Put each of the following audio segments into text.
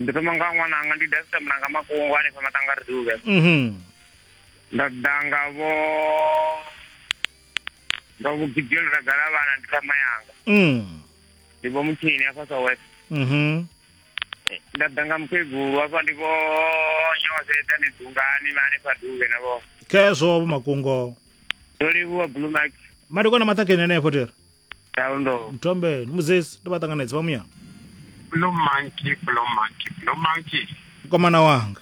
ndi thoma nga ṅwananga ndi davisa mulanga mafhungo hanefha matanga ri duvhe mhm nda danga vho ndo vhugidzelo ra gala vhana ndi thama yanga mm ndi vho mutshini afha sa west mhm nda danga mukegulu afha ndi vho nyose dani dungani na hanefha duvhe na vho khezwo vho makungo ndo livhuwa blue max madekwana maṱhakheni anefho tere Ndau ndo. mthombeni muzesi ndi vha ṱanganedza vha muya Blue monkey, blue monkey, blue monkey. mkomana wanga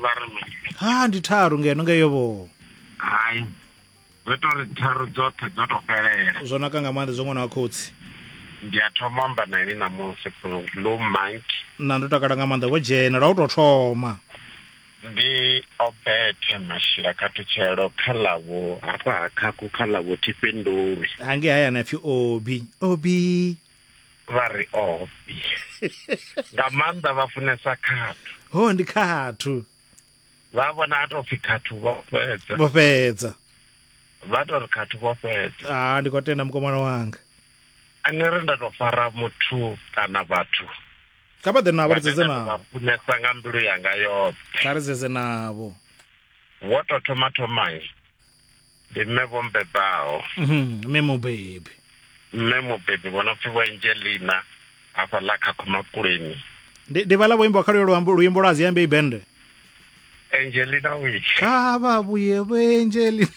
Vha ri mini? ha ndi tharu ngeno ngeyo vho Hai. Zwo ita uri tharu dzoṱhe dzo to fhelela. zwo naka nga maanḓa zwa ṅwana wa khotsi Ndi a thoma u amba na ini ṋamusi blue monkey. na ndo takala nga maanḓa vho dzhena lwa u tou thoma Ndi Obete Mashila Khathutshelo kha ḽa vhu hafha ha Khakhu kha ḽa vhu Thifhindulwi. Hangei hayani a pfi Obi. Obi. Vha ri Obi. Nga maanḓa vha funesa khathu. Ho ndi khathu. Vha vhona ha tou pfi khathu vho fhedza. Vho fhedza. Vha tou ri khathu vho fhedza. Ah ndi khou tenda mukomana wanga. Ani ri nda tou fara muthu kana vhathu kha vha ḓe navho ri dzedze navho funesa nga mbilu yanga yoṱhe kha ri dzedze navho wo to thoma thomai ndi mme vho mbebaho mhm, mme mubebi mme mubebi vhona pfi vho angelina afha ḽa khakhomakuleni ndi vhala vho imba kha luyo luambo luimbo lwa ziambe ibende Angelina Witch. ah babu yebo angeli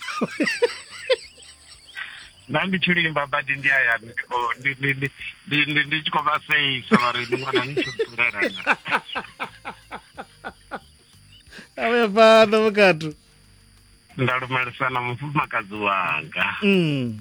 Na ndi tshi limba badi ndi aya ndi khou- ndi- ndi- ndi- ndi- ndi- ndi tshi khou vha seisa vha ri ndi ṅwana ni tshi ḓurela na. awe fana vhukatu Nda lumelisa na mufumakadzi wanga. mm.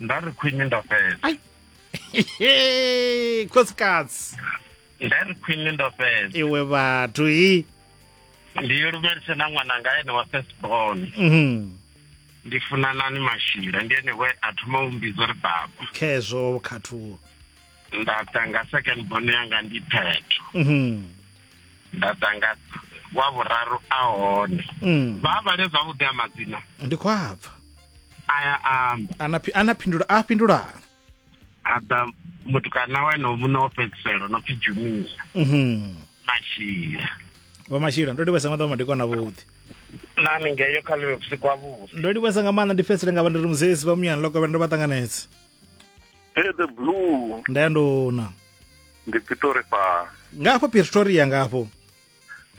nda ri khwine nda fhedza khosikadzi nda ri khwine nda fhedza iwe vhathu hi ndi yo lumelise na ṅwananga ene wa first born mhm. ndi funanani mashila ndi ene we a thoma u mbidzo ri baba khezwo khathuo nda tanga second born yanga ndi phetho mhm. nda ḓa nga wa vhuraru a hone mm. vha vhale zwavhuḓi a madzina ndi khou abva aya amba ana phindula a fhindulaa a ḓa mutukana wa ene muṋe wo fhedziselo no pfi jumia mhm. mashila vho mashila ndo livhesa maḓa madekwana vhuḓi nami ngeyo kha live vhusiku ha vhusi ndo livhesa nga maanḓa ndi fhedzisele nga vha ndi ri muzesi vha muyani lokovhela ndo vha ṱanganedza the blue ndayandona ndi pitori pa nga afho pretoria nga afho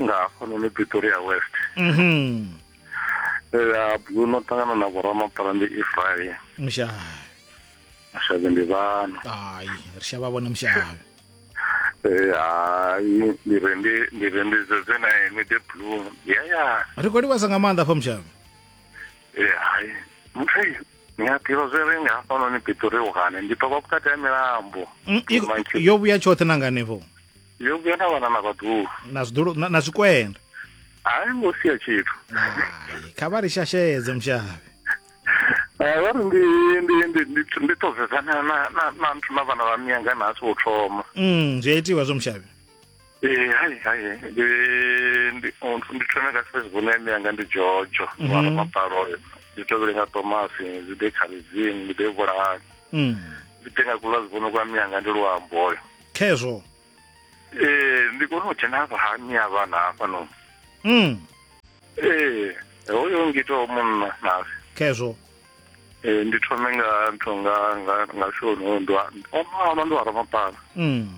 nga hafhanoni pretoria west mhm ya blue no ṱangana na vhoramapara ndi israel mushavi mashavhe ndi vhana hayi ri shavha vhona mushavi Eh, hayi ndi re ndi ndi re ndi zeze na ene the blue ya ya ri khou livhasa nga maanḓa afho mushavi Eh, hayi muthu Nyathiro zwe re nga hafhanoni pitori uhane ndi ṱoka vhukati ha milambo mm, yo vhuya tshoṱhe na nganefho yo vhuya na vhana na vhaḓulu na zwiḓulu na zwikwenda hayi ngo sia tshithu kha vha ri shashedze mushavhe eh, vha ri ndi ndi ndi ndi ndi ṱodzedzana na na na nthu na vhana vha miyanga na asi vho thoma mm zwi a itiwa zwo mushavhe ee hai hai ndi ndi ndi thome nga facebook na imi yanga ndi jojo mm -hmm. mapalo oyo ndi tovhele nga tomasi ndi ḓe khaledzini ndi ḓe vhulahani mm. ndi ḓe nga kula zivhono kwa mi yanga ndi luambo oyo khezwo ee ndi kone u dzhena hafha ha mi ya vhana hafha no mm. ee hoyo ngito munna nasi khezwo ee ndi thome nga ntho nga nga nga shoni hoyo ndi wa omalo ndi wa ramapala mm.